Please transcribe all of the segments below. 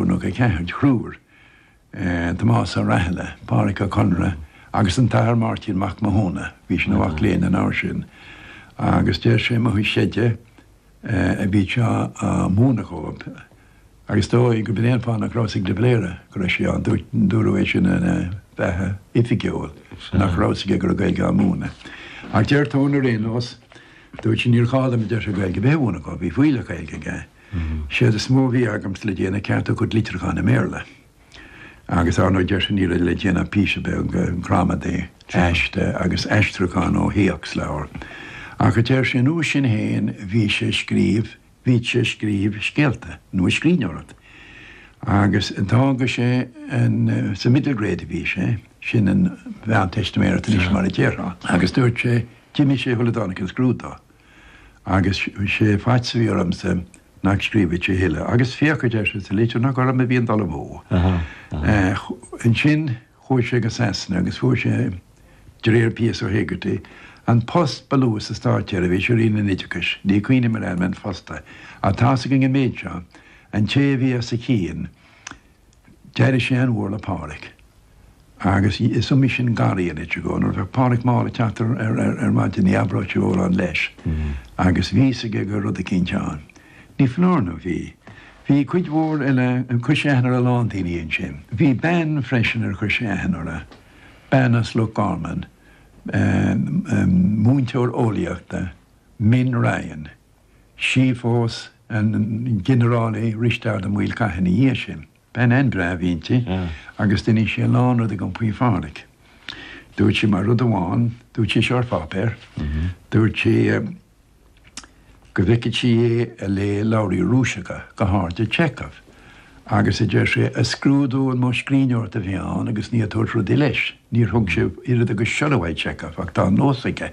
Rúnaí 4 de thriúr, Tomás Ó Rathile, Pádraic Ó Conaire agus an tAthair Máirtín Mac Mathúna, bhí sé ina mhac léinn an uair sin, agus deir sé, 'Mo chuid seide a bhíodh sé á mhúineadh dhóib, agus is dóigh gurb é an fáth nach raibh a fhios ag de Valera go raibh sé ann, dúradh é sin ina bheatha oifigiúil, nach raibh a fhios aige go raibh Gaeilge á múineadh. Ach deir Tone ar aon nós, 'Dúirt sé, 'Níor ghá dom, a deir sé, 'Gaeilge a bheith a mhúineadh dhóibh, bhí fuílleach Gaeilge aige. Séard is mó a bhí agamsa le déanamh ceartú a chuid litriúcháin i mBéarla. Agus ar ndóigh deir sé ní raibh le déanamh píosa beag gramadaí, aiste agus aistriúchán ó théacsleabhar. Ach a deir sé, an uair sin fhéin bhí sé a scríobh, bhíodh sé a scríobh scéalta nó a scríbhneoireacht. Agus d'fhága sé an, sa middle grade a bhí sé, sin an Mheánteistiméireacht anois mar a déarfá. Agus dúirt sé, d'imigh sé shula dtáinig an scrúdú. Agus sé an faitíos a bhí ormsa nach scríobhfadh sé a thuilleadh. Agus féach, a deir sé, sa litir nach orm a bhí an dul amú. Ansin chuaigh sé go Sasana agus fuair sé, de réir P.S. O'Hegarty, an post ba lú sa Státseirbhís i Roinn an Oideachais, ní chuimhním ar ainm an phosta, ach tá's againn an méid seo, an té a bhí as a chionn, D'éirigh sé an-mhór le Pádhraic agus is iomaí sin gar a rinne sé dhó. Nuair a bheadh Pádhraic mall ag teacht ar maidin ní abródh sé mórán leis agus bhí'fhios aige go raibh rud eicínt ann. Ní foláir nó bhí. Bhí cuid mhór eile, chuir sé aithne ar a lán daoine ansin. Bhí bean freisin ar chuir sé aithne uirthi, bean as Loch Garman, múinteoir eolaíochta, Min Ryan. Sí a phós an Ginearál Risteard Ó Maolchatha ina dhiaidh sin. Bean an-bhreá a bhí inti agus d'inis sí a lán rudaí dhom faoi Phádraig. Dúirt sí mar rud amháin, dúirt sí seo ar pháipéar, dúirt sí go bhfeiceadh sí é ag léamh leabhra Rúiseacha go háirid Chekhov agus a deir sí ag scrúdú an modh scríbhneoireacht a bhí ann agus ní ag tabhairt rudaí leis. Níor thug sé oiread agus siolla uaidh Chekhov ach tá an nós aige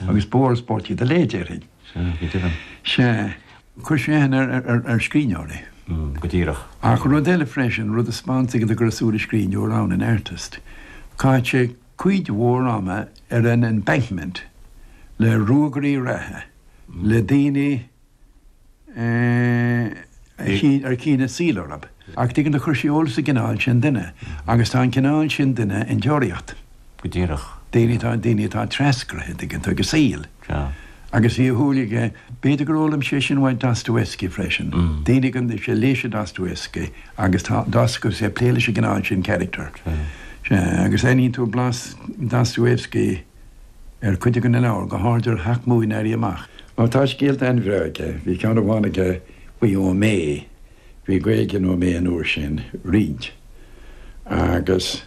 agus bó agus bó tí do léigh, déarfainn. Sea, chuir sé sin ar scríbhneoir é. Go díreach. Ach rud eile freisin, rud a spáineanns go raibh súil an scríbhneoir ann, an artist. Chaith sé cuid mhór ama ar an embankment le ruagairí reatha, le daoine, ar chinn an saol orthub, ach tuigeann tú, chuir sé eolas ar an gcineál sin duine agus tá an cineál sin duine in Deoraíocht. Go díreach. daoine atá daoine atá treascraithe, tuigeann tú, ag an saol. Sea. Agus bhí an tsúil aige, b'fhéidir gur fhoghlaim sé sin uaidh Dostoevsky freisin. Daoine gan sé léigh sé Dostoevsky agus tá Dostoevsky ag plé leis an gcineál sin character. Sea. Agus aithníonn tú blas Dostoevsky. ar cuid againn an leabhar, go háirid ar Sheacht mBua an Éirí Amach. Ó tá scéalta an-bhreá aige, bhí ceann amháin aige faoi Ó Méith, bhí Gaeilge in Ó Méith an uair sin, roinnt, agus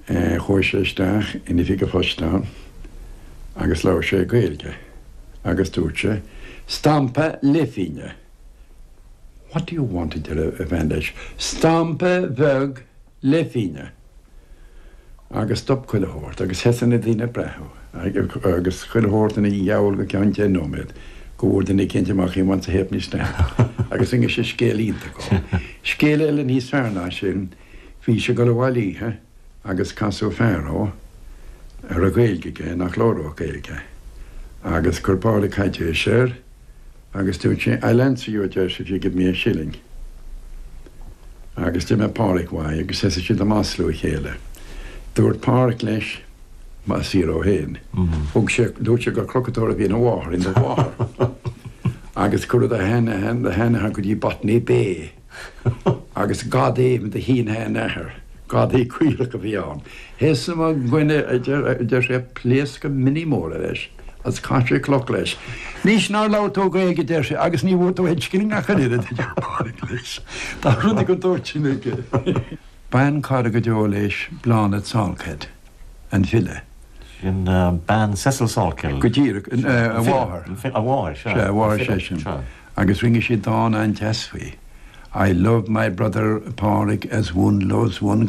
chuaigh sé isteach in Oifig an Phoist ann agus labhair sé Gaeilge agus dúirt sé, Stampa leithphingne! What do you want, a deir an bhean leis, stampa bheag leithphingne agus stop chuile shórt agus sheas na daoine ag breathnú agus chuile shórt ina gheall go ceann deich nóiméad go bhfuair duine eicínt amach he wants a ha'penny stamp agus rinne sé scéal iontach dhó Scéal eile níos fearr ná sin, bhí sé ag dul abhaile oíche agus casadh fear dhó a raibh Gaeilge aige nach labhródh Gaeilge agus chuir Pádraig caidéis air Agus dúirt sé, I'll answer you, a deir sé, if you give me a shilling. Agus d'imigh Pádraic uaidh agus thosaigh siad ag maslú a chéile. Dúirt Pádraic leis, Maith siar ó shin. Thug sé, dúirt sé gur crochadóir a bhí ina mháthair, in do mháthair. Agus cuireadh do sheanathair go dtí Botany Bay. Agus gadaí do shin-seanathair, gadaí caorach a bhí ann. Thosaigh mo dhuine a deir sé ag pléascadh mionnaí móra leis agus chaith sé cloch leis. Anois nár labhair tú Gaeilge a deir sé agus ní bhfuair tú aon scilling ach an oiread a deir Pádraig leis. Tá rudaí den tsórt sin aige. B'an-chara go deo leis Bláthnaid Salkeld, an file. Sin bean Cecil Salkeld. Go díreach. A mháthair. A mháthair. Sea a mháthair seisean. agus rinne sí dán an-deas faoi, 'I love my brother Pádraig as one loves one'.